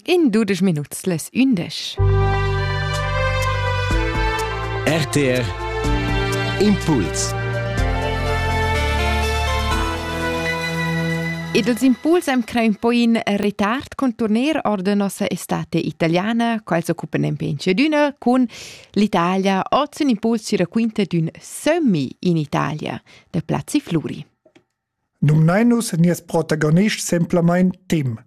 In dudesch minuts les ündesch. RTR Impuls Ed els impuls am crein poi in retard con turner or de nossa estate italiana, quals occupen en penchedüna con l'Italia, oz un impuls ci raquinta d'un semi in Italia, de Plazzi Fluri. Numnain nus nies protagonist semplamein Tim.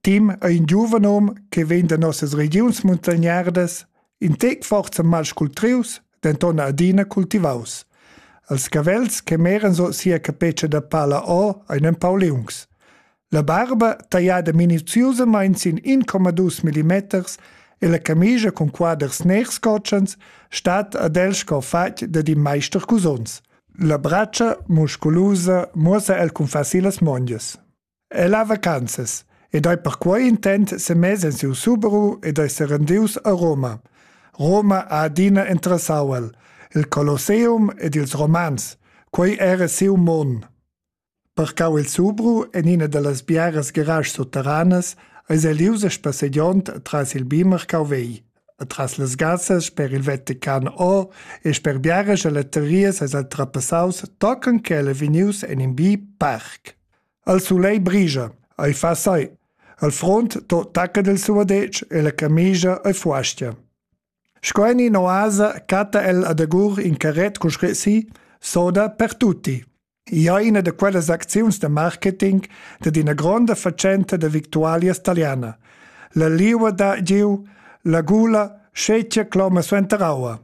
Tim ei in giuven hom che vegn da nossas regiuns muntagnardas, in tec forza malscultrius, denton adina cultivaus. Els cavels che meran sut sia capetscha da pala o ein empau liungs. La barba, tagliada minuziusamain sin 1,2 millimeters, e la camigia cun quaders ners cotschens stat ad el sco fatg dad in maister cusons. La bratscha, musculusa, muossa el cun facil las mondias. El ha vacanzas ed ei per quei intent semess en siu Subaru ed ei serendius a Roma. Roma ha adina interessau el, il Colosseum ed ils Romans, quei era siu mon. Parcau il Zubru en ina dallas biaras garaschs sutteranas eis el ius a spassegiond atras il bi marcau vegl, atras las gassas sper il Vatican O e sper biaras galeterias eis el trapassaus tochen ch'el ei vegnius en in bi parc. El sulei brigia, ei fa sai. Al front to tacca del suo dec e la camigia ei fuastia. Sco en in oasa catta el adagur in carret con scresi soda per tutti. ia ina da quellas acziuns da marketing dad ina gronda fatschenta da victualias taliana, la liua da giu, la gula, scetgia cloma suenter aua.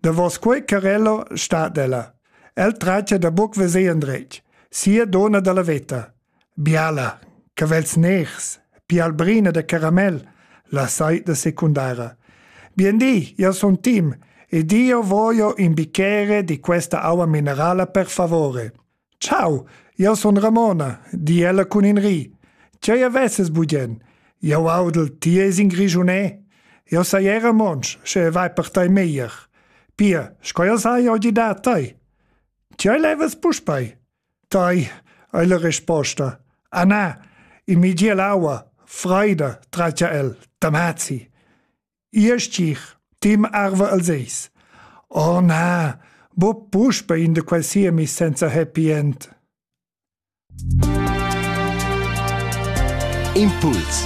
Davos quei carello sta ella. El traccia da buc veser endretg, sia dona dalla veta. Biala, cavels ners, bialbrina da caramel, la saida secundara. Bien di, io sun Tim ed io voglio in bicchiere di questa aua minerala per favore. Ciao, io sun Ramona, di ella cun in ri. Che avesses bugen? Io audel, ti es in Grigiunè. Io sei era monsch, sche vai per tai meglier. Pia, sco io sai oggi da tai? Che levas puspei? Tai, ei la risposta. Ah na, in mi dia l'aua, freida, tratgia el, tamazzi. Iestich, tim arva al seis. Oh na, bo puspe in de quel sia mi senza happy end. Impuls